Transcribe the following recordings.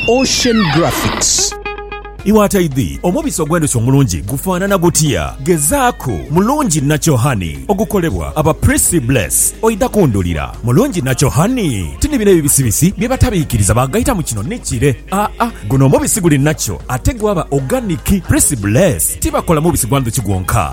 Ocean Graphics. Iwe ataidhi, omubisi ogw'endhuki omulungi gufaanana gutya? Gezaaku Mulungi Natural Honey ogukolebwa aba Prissy Bless oidha kundhulira. Mulungi Natural Honey ti ni bino ebibisibisi bye batabiikiriza baagaita mu kino ni kire. Aa, guno omubisi guli natural ate gwaba organic. Prissy Bless tibakola mubisi gwa ndhuki gwonka.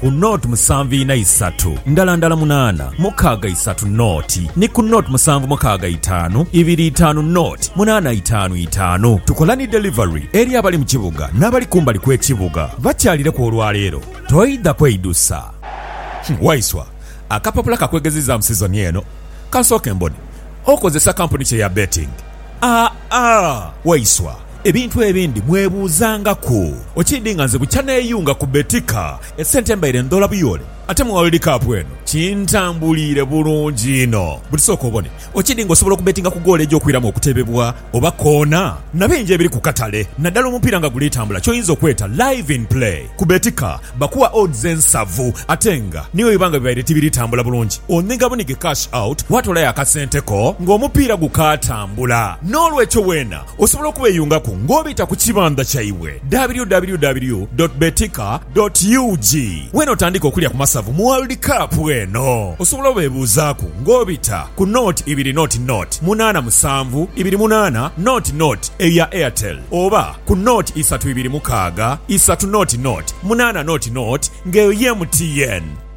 ku nought musanvu ina isatu ndala ndala munaana mukaaga isatu nought ni ku nought musanvu mukaaga itaanu ibiri itaanu nought munaana itaanu itaanu. Tukola ni delivery eri abali mu kibuga n'abali kumbali kw'ekibuga. Bakyalireku olwaleero. Toidha kweidusa. Waiswa, akapapula ka kwegezizaamu sizoni eno kansooke mbone okozesa kampuni ki eya betting? Aa, Waiswa. Ebintu ebindi mwebuuzangaku. Okiidhi nga nze bukya neeyunga ku Betika, esente mbaire ndhoola buyoole, ate mu World Cup eno kintambuliire bulungi inho. Buti sooka obone, okiidhi nga osobola okubetinga ku goolo egy'okwiramu okuteebebwa oba koona na bingi ebiri ku katale. Naddala omupiira nga guli tambula ky'oyinza okweta Live in Play, ku Betika bakuwa odds ensavu ate nga ni bwe biba nga bibaire tibiri tambula bulungi, onhiga bunhige cash out waatoolayo akasente ko ng'omupiira gukaatambula. Noolwekyo weena Osobola okubeyungaku nga obita ku kibandha kyaibwe www dot betika dot ug. Wenotandiika okulya ku masavu mu World Cup eno, osobola obebuuzaaku nga obita ku nought ibiri nought nought munaana musanvu ibiri munaana nought nought eya Airtel oba ku nought isatu ibiri mukaaga isatu nought nought munaana nought nought nga eyo ye MTN.